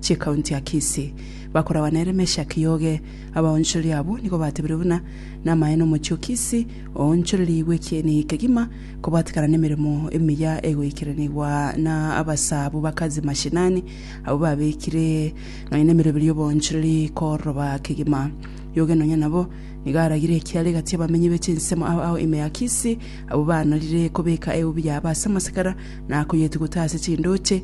ch'ekaunti ya Kisii, bakoragwa nere Meshack Yoge. Abaonchoreri abwo nigo batebirie buna namaene omochie o Kisii oonchorerigwe ekieni kegima kobwatikana nemeremo emiya egoikeranigwa na abasaabwo bakazi mashinani abwo babekire nonya nemeroberio y'oboonchoreri koroba kegima. Yoge nonya nabo nigo aragire ekiara egati abamenyi be chinsemo ao ao ime ya Kisii abwo baanarire kobeka eubi yabo ase amasekara na koyetuguta ase chindooche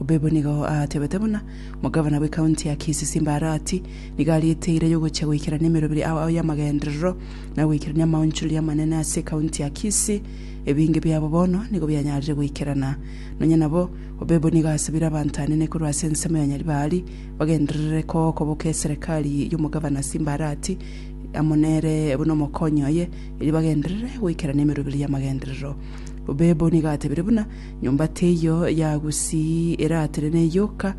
Obebo nigo aatebete buna omogavana bw'ekaunti ya Kisii Simba Arati nigo ariete eira y'ogochia goikerania emeroberi ao y'amagenderero na goikerania amaonchoreria amanene ase ekaunti ya Kisii. Ebinge biabo bono nigo bianyarire goikerana. Nonya nabo, Obebo nigo asabire abanto anene korwa ase ensemo ya Nyaribari bagenderere kogokoboka eserekari y'omogavana Simba Arati amo nere buna omokonyi oye erio bagenderere goikerania emeroberi y'amagenderero. Obebo nigo atebire buna Nyomba teiyo ya gusii eratenene yoka,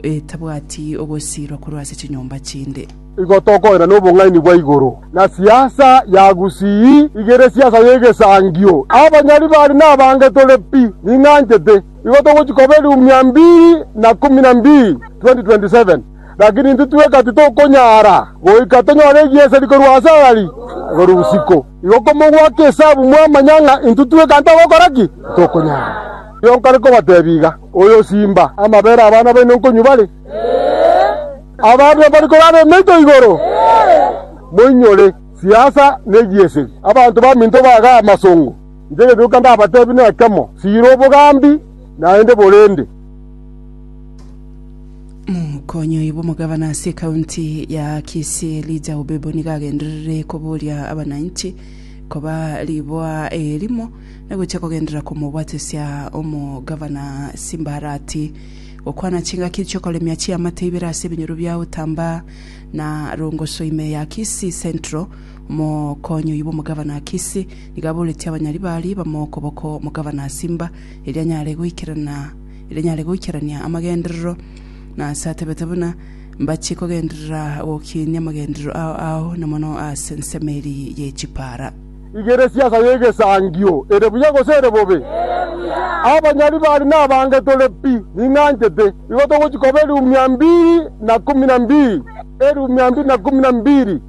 etabwati ogosiirwa korwa ase chinyomba chinde. Igo tokoenda nobong'aini bwa igoro na siasa ya gusii igere siasa y'egesangio. Abanyari bari nabange tore pi, ning'anchete. Igo togochi koba elioumia mbiri na kumi na mbiri 2027, lakini intwe tweka titokonyara goika tonyore egieseri korwa ase ayari igoro bosiko. Igo komogwaka esabu mwamanya ng'a intwe twekanta gokora ki, tokonyara. Erio nkare kobatebia iga, Oyosimba amabere abana baino nkonywa bare? Ababe bari korara emeito igoro? Moinyore siasa ne giesegi, abanto baminto baga amasongo. Inche egetuko ndabatebie nekemo, siira obogambi, naende borende. Mokonyoi bw'omogabana ase ekaunti ya Kisii Elijah Obebo nigo agenderere koboria abananchi koba riboa erimo na gochia kogenderera komobwatesia omogabana Simbarati gokwana chingaki chiokoremia chiamate ibere ase ebinyoro bia Utamba na Rongoso ime ya Kisii Central. Mokonyoi bw'omogabana Kisii nigo aboretie abanyari baria bamo okoboko omogabana Simba erio anyare goikerana rinyare goikerania amagenderero, na ase atebete buna, Mbachie kogenderera gokiinia amagenderero ao ao, na mono ase ensemo eria ye chipaara. Rigeresia ensa y'egesangio, ere buya gose ere bobe? Abanyari bari nabange tore pi, ning'anchete. Igo togochia koba elfu mia mbiri na kumi na mbiri, elfu mia mbiri na kumi na mbiri.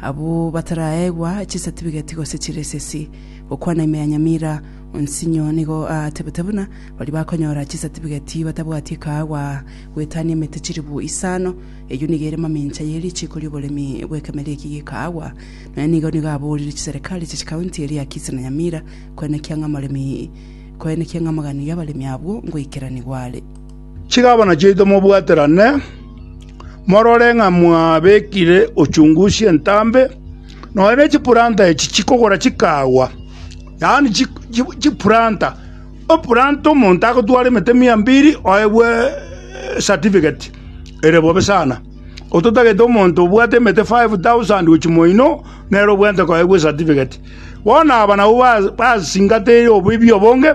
Abwo bataraegwa chisatibigeti gose chiresesi, gokwana ime ya nyamira, onsinyo nigo aatebete buna baria bakonyora chisatibigeti batabwati ekaagwa gwetania emete chilifu isano, eyio nigo ere mamincha ye richiiko ri'oboremi bw'ekemeria eki g'ekaagwa. Nonya nigo nigo aboorire chiserekari chia chikaunti eria Kisii na Nyamira koenekia ng'a moremi koenekia ng'a moganio y'abaremi abwo ngoikeranigwa are. Chigabana chiaito mobwaterane, morore ng'a mwabekire ochungu chi'entambe, nonya ne chipuranta echi chikogora chikaagwa, yaani chipuranta. Epuranta omonto agotwara emete mia mbiri oegwe esatifiketi ere bobe sana. Ototagete omonto obwate emete five thousand gochia moino nere obwenerete koegwa esatifiketi. Bono aba nabwo basingateire oboibi obonge.